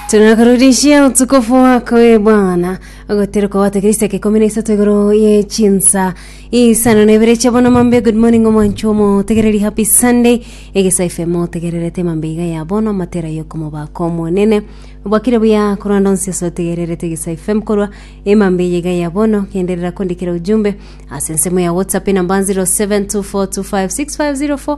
Tunakurudishia utukufu wako e Bwana, ogotera kwabata Kristo kikumi na isato igoro ye chinsa isano na ibere chia bono mambe. Good morning omwanchi omo tegereri happy Sunday egesa FM otegererete mambe iga ya bono matera yokomoba komonene bwakire buya korwanda onsi ase otegererete egesa FM korwa emambe yiga ya bono genderera kondikira ujumbe ase ensemo ya WhatsApp enamba 0724256504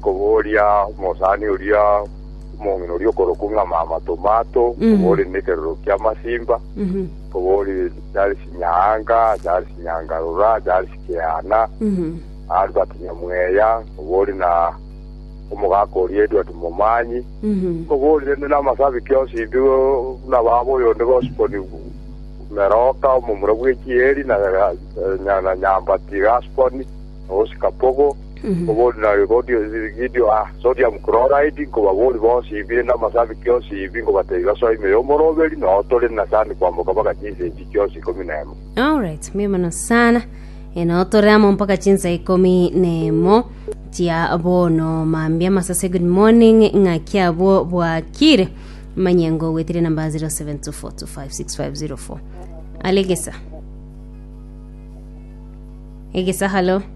Kobooria omosani oria omong'ina oria okorokwa ng'a Mama Tomato, kobooria nekeroro ki'amasimba, kobooria Charles Nyaanga, Charles Nyangarora, Charles Keana, Albert Nyamweya, kobooria na omogaka oria Edward Momanyi, kobooria rende namasabiki onsi mbigo buna baba oyonde Gospon Meroka, omomura bw'echieri, na Nyambati Gaspon, na Oscar Pogo, Obondi na obondi o Gideoni o Sodium Chloride, nkobabori bonsi ibiire na amasabi kionsi ibi, nkobatebia basoe ime y'omoroberi, na otore na sani kwamboka mpaka chinsa echi chionsi ikomi na emo. Alright, mbuya mono sana enotore amo mpaka chinsa ikomi nemo chia bono mambia masase good morning ng'aki abwo bwakire manyengo gwetire namba 0724256504 alegesa egesa halo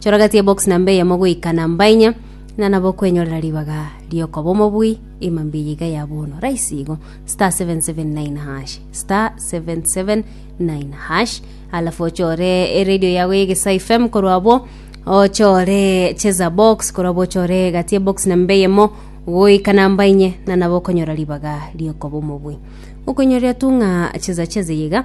Choragati ebox namba eyemo goika namba inya, na nabo kwenyorera ribaga riokoba omobui ima mbiya iga ya bono. Raisi igo, star 779 hash, star 779 hash, alafu ochore eredio yago ya Egesa FM korwa abo ochore cheza box korwa abo ochore gati ebox namba eyemo goika namba inye na nabo okonyora ribaga riokoba omobui okonyorera tu ng'a cheza cheza iga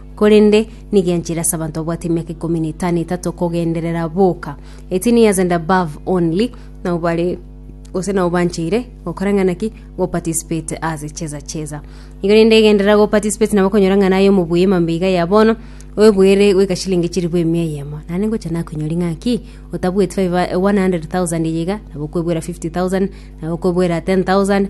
Korende nigo enchera ase abanto babwate emiaka ikomi na etano etato kogenderera boka, 18 years and above only, nabo bare gose nabo bancheire gokora ng'a naki goparticipate as cheza cheza. Igo rende egenderera goparticipate nabo okonyora ng'a naye omobuya emambia iga ya bono, oebuere goika chilingi chilifu emia eyemo. Naende ngocha nakonyori ng'a ki, otabueti 500 100,000 eye iga, nabo okoebuera 50,000, nabo okoebuera 10,000,